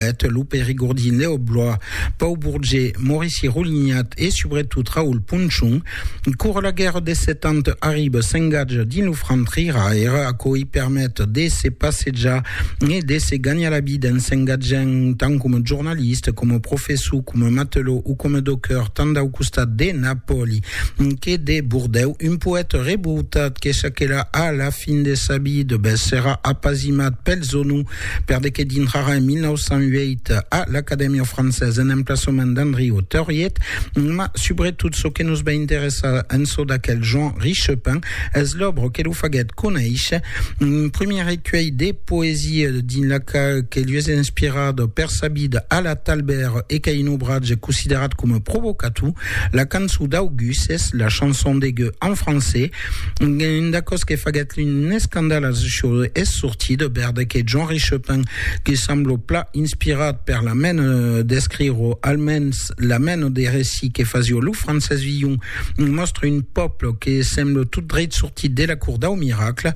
Eth lo perigordin Leo Blois, Pau Bourget, Maurici Roulignat e subretot Raoul Ponchon, cora la guèrra des Sèt Ans arriba s'engatja dins lo front rira era, aquò i permet de se passejar e de se ganhar la vida en s'engatjant tant coma jornalista, coma professor, coma matelò o coma docker tant dau costat de Napòli que de Bordèu, un poèta revoltat que çaquelà a la fin de sa vida, bèth serà apasimat pels onos. Per de que dintrarà en 1908 a l'Acadèmia Française en emplaçament d'Andriu Tauriet, ma subretot çò que nos va interessar en çò d'aquel Jean Richepin es l'òbra que lo faguèt conéisher, un primièr recuelh de poesia dins la qual que lues es inspirat per sa vida a la Talbèr e qu'a un obratge considerat coma provocator, la cançon d'Auguste, la chanson de Gueux en francés, Una còs que faguèt un escandal als Jeux es sortit de bèrde que Jean-Ri Chopin, que semblo pla inspirat per la mena d'escrire o almens la mena de recit que fasió lo Francés Villon, mòstre un pòble que sembla tot dreit sortit de la Cour dau Miracle,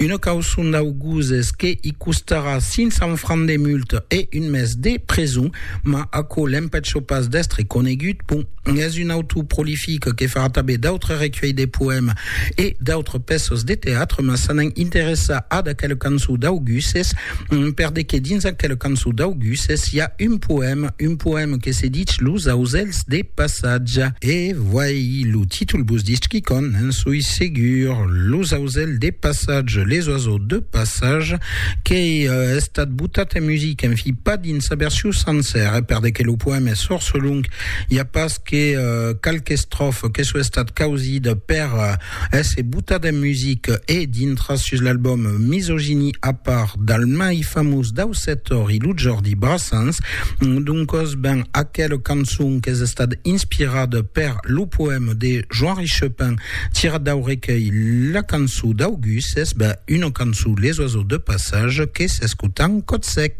una causon dau gosés que i costarà 500 francs de multa e un mes de preson, mas aquò l'empècho pas d'èstre conegut, bon. Es un autor prolific que fa tanben d'autres recuelhs de poèmes e d'autres pèças de teatre, mas s'anam interessar ad aquel cançon d'Auguses, per de que dins aquel cançon d'Auguses i a un poème, un poème que se ditz Los auselhs de passatge. E voei lo títol vos ditz quicòm, n'en soi segur, Los auselhs de passatge, les oiseaux de passage, qu'ei estat botat en musica, en fi, pas dins sa version sancèra, per de que lo poème es fòrça long, I a pas que qualque estrofa que soi estat causida per èsser botat en music e dintras sus l'album Misogynie a part del mai famós dau setor i lo Jordi Brassens. Doncòs, ben, aquela cançon qu'es estat inspirada per lo poèma de Joan Richepin tirat dau recuelh La cançó dau gus es ben una cançó Les oiseaux de passage que s'escotan còt sec.